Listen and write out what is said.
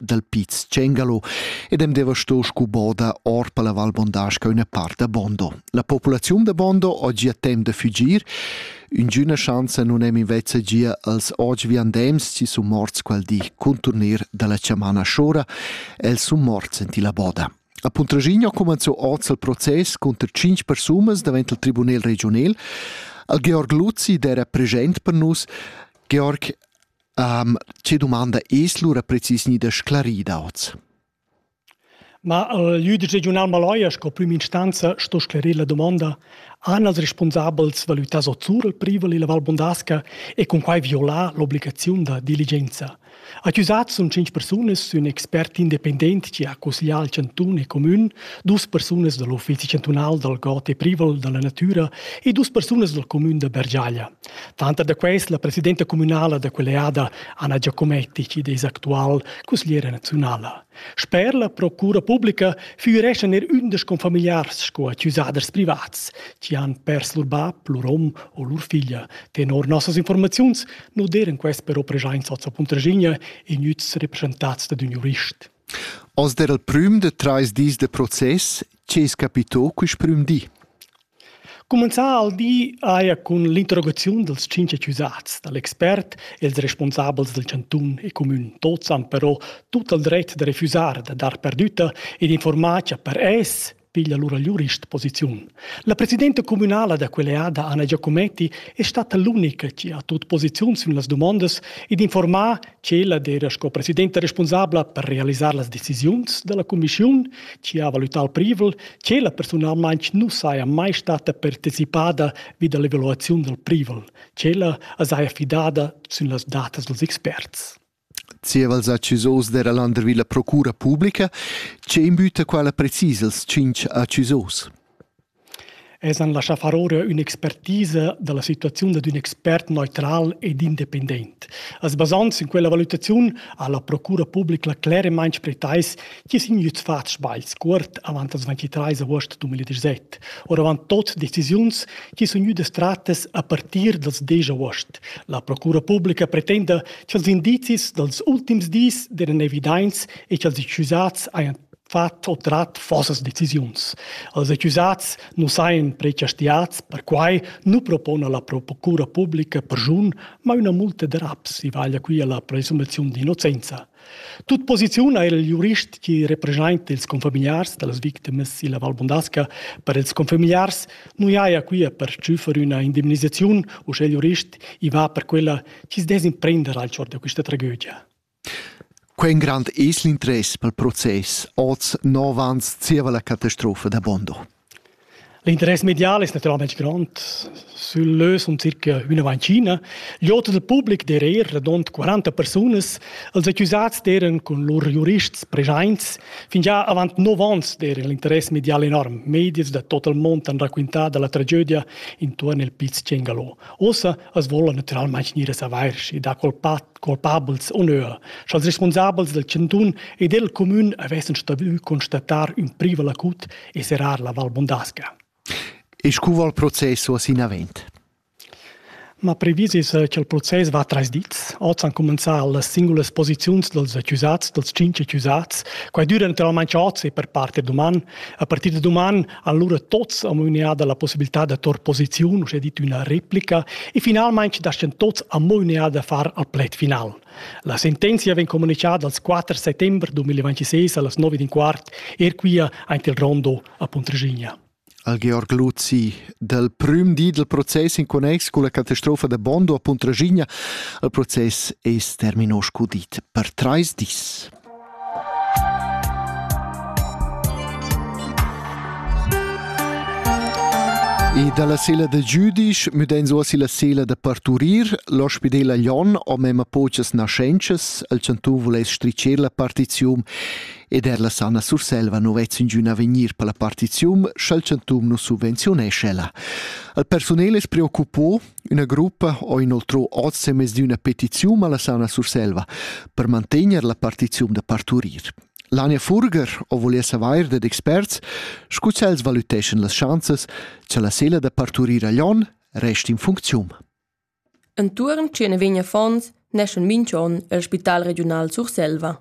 dal Piz Cengalo ed hem deva sto scu boda or per la Val Bondasca üna part da Bondo. La populaziun da Bondo oggi ha temp da fugir, ingüna schanza nun hem invece gia als oggi viandems ci sun morts quel di contornir dalla chamana Schora, els sun morts in la boda. A Puntraschigna comanzò oz il proces conter 5 persunas davent il Tribunel regional. Al Georg Luzzi, der era present per nus, Georg, Um, tge domanda es lura precis gnida sclarida oz? Ma el jüdic regiunal Maloja sco prüm instanza sto sclerir la domanda han els responsabels valütas o zur il privel illa Val Bondasca e cun quai violar l'obligaziun da diligenza. Accusats sun cinc persunas ün expert independent chi ha cusglià al cantun e comün, dus persunas da l'Uffizi chantunal dal god e privel da la natüra e dus persunas dal comün da Bergiaglia. Tanter da quels la presidenta communala da quell'eada Anna Giacometti chi'd es actual cusgliera naziunala. Sper la procura publica füreschan er ündesch confamiliars sco accusaders privats chi han pers lur bap, lur hom o lur figlia. Tenor nossas informaziuns nu d'eran quest però preschaints oz a Puntraschigna e gnüts represchentats dad ün jurist. Oz d'era il prüm da trais dis de process, che es capito quist prüm di? Cumenzà ha il di eir cun l'interrogaziun dals tschinch accusats da l'expert e ils respunsabels dal chantun e cumün. Tuots han però tut il dret da refüsar da dar perdütta ed infuormar cha per es piglia lura l'jurist posiziun. La presidenta cumünala da quell'eada Anna Giacometti è stata l'unica chi ha tut posiziun sün las dumondas ed infuormà Tschella era sco presidenta responsabla per realisar las decisiuns dalla cumissiun, chi ha valutau privel, tschella personalmein nu saja mai stata partecipada vi dalla evaluaziun dal privel. Tschella as haja fidada sün las datas dels experts. Zievals accusos dera Landervilla Procura Publica, che imbüta quala precis els tschinch accusos? Els han laschà far ora ün'expertisa da la situaziun dad ün expert neutral ed independent. As basand sün quella valutaziun ha la procura publica cleremaing pretais chi sun gnüts fats sbagls cuort avant las 23 aost 2017, oravant tot decisiuns chi sun gnüdas trattas a partir dals 10 aost. La procura publica pretenda cha'ls indizis dals ultims dis deran evidaints e cha'ls accusats hajan fat o trat vossas decisiuns. Els accusats nu sajan prechastiats, perquai nu propona la procura publica perschun, ma üna multa da raps i vaglia qui alla presumaziun d'innocenza. Tut posiziun ha il jurist chi representa ils confamiliars da las victimas illa Val Bondasca per ils confamiliars nu haja quia per tschüffer üna indemnisaziun, usche il jurist i va per quella chi's dess imprender al chor da quista tragödia. Quei in grand es l'interess pel process oz nov ans zieva la catastrofa da Bondo. L'interess medial es natüralmaing grond. Sül lö sun circa üna vancina. L'oter dal public d'eir eir radund 40 persunas. Els accusats d'eiran cun lur jurists preschaints. Fingià avant nov ans d'eira l'interess medial enorm. Medias da tot il mond han raquintà da la tragedia intuorn il Piz Cengalo. Uossa as voula natüralmaing gnir a savair, schi da qual part culpabels onur, sch'als responsabels dal chantun e del comün avessen staviü constatar ün privel acut e serrar la Val Bondasca. E scu va il proces uoss inavent? Ma previs es eh, cha'l process va trais dits. Oz han cumenzà las singulas posiziuns dels accusats, dels cinq accusats. Quai düra naturalmaing oz e per part er duman. A partir da duman Allura tots am unea dalla possibilità da tor posiziun, uschè dit üna replica, e finalmaing dastan tots am unea da far al pled final. La sentenzia vegn comunicada als 4 settembre 2026 allas 9 d'un quart, er quia aint il rondo a Puntregigna. Al Georg Luzi, dal prüm di del process in connex con la catastrofa da Bondo a Puntragigna, il process es terminos cudit per trais dis. E dalla sela da Jüdisch müdein uossa la sela da parturir. L'ospidel a Lyon ho mema pochas naschentschas, el chantu vuless stricher la partizium ed er la Sanna Surselva nu vezz ingün avegnir per la partizium, sch'al chantum nu subvenzionescha ella. Il personel es preoccupò Üna gruppa ho inoltrò oz semez di üna petiziun alla sauna Surselva per mantegner la partiziun da parturir. L'Ania Furger ho volieu savair dad experts, scu ch'els valüteschan las schanzas cha la sela da parturir a Lyon resta in funcziun. Entuorn tschien vegn affons neschan minch'on el Spital regiunal Surselva.